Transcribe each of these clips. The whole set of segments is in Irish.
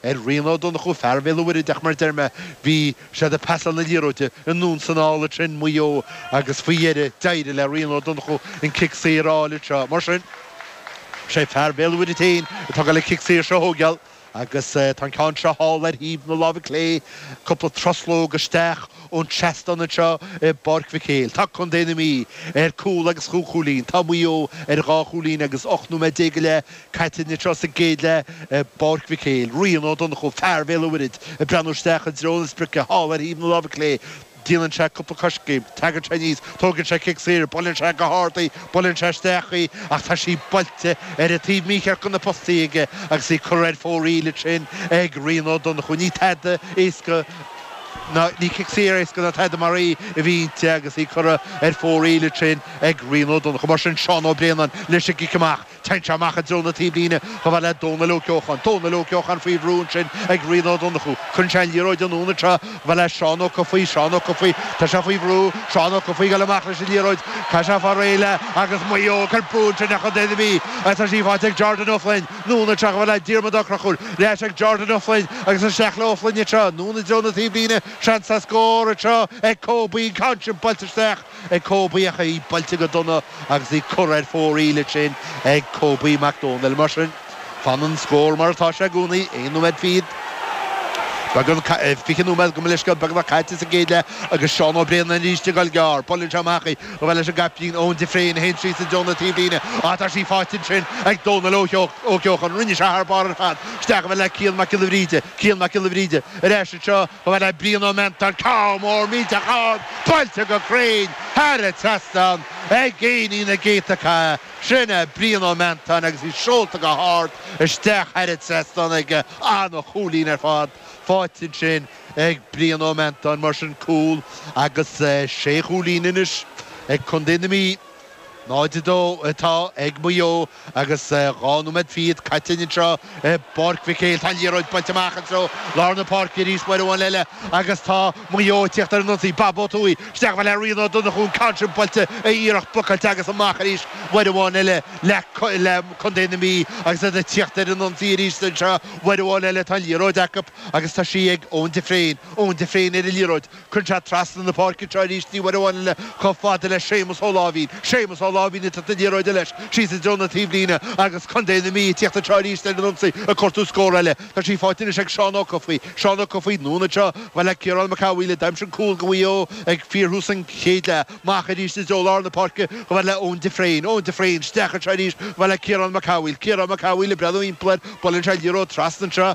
Ar Rian Ó Donnchú, fear Bhéal an Mhuirthead, ach mar a deir mé, bhí siad ag pasáil na liathróide anonn is anall ansin, Maigh Eo agus faoi dheireadh d'éirigh le Rian Ó Donnchú an cic saor a fháil anseo. Mar sin is é fear Bhéal an Mhuirthead féin atá ag dul an cic saor seo a thóigeáil agus tá an ceann seo thall ar thaobh na láimhe clé cúpla truslóg isteach ón tseastán anseo i bPáirc Mhic Éil. Tá Contae na Mí ar cúl agus cúig chúilín. Tá Maigh Eo ar dhá chúilín agus 18 nóiméad go leith Caite anseo sa gcéad leath i bPáirc Mhic Éil, Rian Ó Donnchú, fear Bhéal an Mhuirthead, ag breathnú isteach i dtreo na sprioce, thall ar thaobh na láimhe clé. Déanann sé cúpla coiscéim, tagann sé aníos, tógann sé cic saor, buaileann sé go hard í, buaileann sé isteach í ach tá sí buailte ar an taobh mícheart de na postaí aige agus í curtha ar fóraoil ansin ag Rian Ó Donnchú. Ní tada éasca ná, ní cic saor éasca ná tada mar í a bhí inti agus í curtha ar fóraoil ansin ag Rian Ó Donnchú. Mar sin, Seán Ó Braonáin leis an gcic amach. Téann sé amach i dtreo na taobhlíne chomh fada le Dónal Ó Ceocháin. Dónal Ó Ceocháin faoi bhrú ansin ag Rian Ó Donnchú. Cuireann sé an liathróid anonn anseo chomh fada le Seán Ó Cofaigh. Seán Ó Cofaigh, tá sé faoi bhrú. Seán Ó Cofaigh ag dul amach leis an liathróid. Caithfidh sé fáil réidh léi agus Maigh Eo ag cur brú ansin ar Chontae na Mí. Tá sí faighte ag Jordan Ó Floinn. Anonn anseo chomh fada le Diarmaid Ó Conchúir. Ar ais ag Jordan Ó Floinn agus isteach le Ó Floinn anseo. Anonn i dtreo na taobhlíne. Seans le scór anseo ag Kobe. An ceann sin buailte isteach. ag Kobe ach í buailte go dona agus í curtha ar fóraoil ansin ag Kobe Mac Dónaill. Mar sin, fanann an scór mar atá sé i gcónaí, aon nóiméad fichead, beag, fiche nóiméad gabh mo leithscéal beagnach caite sa gcéad leath agus Seán Ó Braonáin arís ag dul gearr. Buaileann sé amach í, chomh fada leis an gcaiptín Eoin de Fréin a théann síos i dtreo na taobhlíne ach tá sí faighte ansin ag Dónal Ó Ceocháin. Rinne sé thar barr ar fad isteach chomh fada le Cian Mac Giolla Bhríde. Cian Mac Giolla Bhríde. Ar ais anseo chomh fada le Brian Ó Meantáin ceann mór millteach ard buailte go cruinn thar an trasnán ag Gaoithín na gcéadta catha. Sin é Brian Ó Meantáin agus í seolta go hard isteach thar an trasnán aige. An-chúilín ar fad faighte ansin ag Brian Ó Meantáin mar sin cúl agus sé chúilín anois ag Contae na Mí. 0-2 atá ag Maigh Eo agus dhá nóiméad fichead caite anseo i bPáirc Mhic Éil. Tá an liathróid buailte amach i dtreo lár na páirce arís, uair amháin eile, agus tá Maigh Eo ag tíocht ar an ionsaí. Bob Ó Tuathaigh isteach chomh fada le Rian Ó Donnchú, an ceann sin buailte, a iarracht blocáilte agus amach arís uair amháin eile le Contae na Mí agus iad ag tíocht ar an ionsaí arís anseo. Uair amháin eile tá an liathróid acu agus tá sí ag Eoin de Fréin. Eoin de Fréin ar an liathróid. Cuireann sé trasna na páirce anseo arís uair amháin eile chomh fada le Séamus Ó Láimhín. Séamus Ó Láimhín ag tabhairt na liathróide leis síos i dtreo na taobhlíne agus Contae na Mí ag tíocht anseo arís ar an ionsaí ag cuartú scór eile. Tá sí faighte anois ag Seán Ó Cofaigh. Seán Ó Cofaigh anonn anseo chomh fada le Ciarán Mac Cathmhaoil a d'aimsigh cúl do Mhaigh Eo ag fíorthús an chéid leath. Amach arís i dtreo lár na páirce chomh fada le Eoin de Fréin. Eoin de Fréin isteach anseo arís chomh fada le Ciarán Mac Cathmhaoil. Ciarán Mac Cathmhaoil ag breathnú thimpeall air. Buaileann sé liathróid trasna anseo.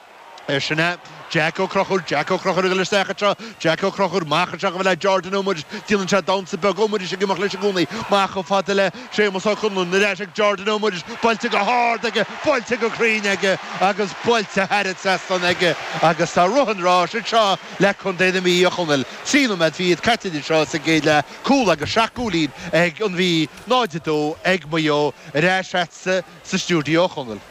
É sin é. Jack Ó Conchúir, Jack Ó Conchúir a ghoil isteach anseo, Jack Ó Conchúir, amach anseo go bhfuil a Jordan Ó Muiris, déanann sé damhnsa beag, Ó Muiris ag imeacht leis i gcónaí, amach chomh fada le Séamus Ó Conluain, ar ais ag Jordan Ó Muiris, buailte go hard aige, buailte go cruinn aige agus buailte thar an trasnán aige agus tá rith an ráis anseo le Contae na Mí, a Chonaill. Trí nóiméad fichead caite anseo sa gcéad leath, cúl agus seacht gcúilín ag An Mhí, 0-2 ag Maigh Eo, ar ais agatsa. sa stiúideo, a Chonaill.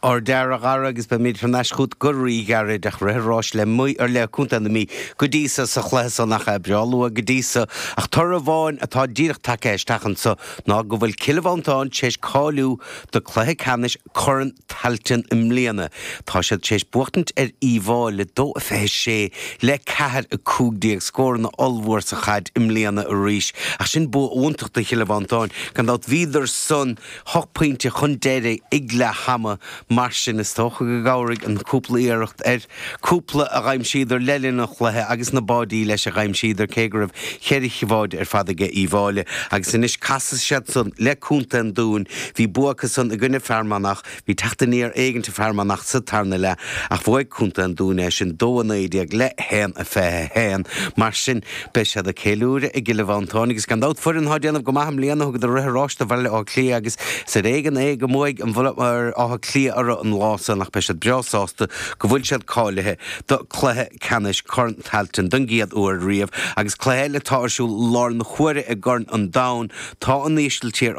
Ardfhear, a Gharry agus beimid thar n-ais chugat go rí-ghairid, ach rith an ráis le Maigh ar le Co. na Mí go dtí so sa chluiche san ach é breá luath go dtí so ach toradh amháin atá díreach tagtha isteach anseo ná go bhfuil Cill Mhantáin téis cáiliú do cluiche ceannais Corn Tailteann i mbliana. Tá siad téis buachtaint ar Uíbh Fhailí le dó a 26 le ceathair 15 scóranna ollmhór sa chaid i mbliana arís ach sin bua iontach do Chill Mhantáin gan dabht bhíodar san hocht bpointe chun deiridh ag leath ama, mar sin is dócha go gcabhraigh an cúpla iarracht ar chúpla a d'aimsíodar le linn an chluiche agus na báidí leis a d'aimsíodar cé go raibh ceithre bháide ar fad aige Uíbh Fhailí agus anois casfaidh siad san le Contae an Dúin bhí bua acu san i gcoinne Fearmanach bhí teacht aniar éigint ó Fearmanach sa tarna leath ach bhuaigh Contae an Dúin é sin dó a naoi déag le haon a fiche a haon mar sin Beidh siad ag ceiliúradh i gCill Mhantáin agus gan dabht foireann atá ag déanamh go maith i mbliana. Thugadar rith an ráis do Bhaile Átha Cliath agus is ar éigean é go mbuaigh an Bhaile Átha Cliath orthu an lá san ach beidh siad breá sásta go bhfuil siad cáilithe do cluiche ceannais Corn Tailteann don gcéad uair riamh agus cluiche eile atá ar siúl i láthair na huaire i gCorn an Domhain. Tá an Ísiltír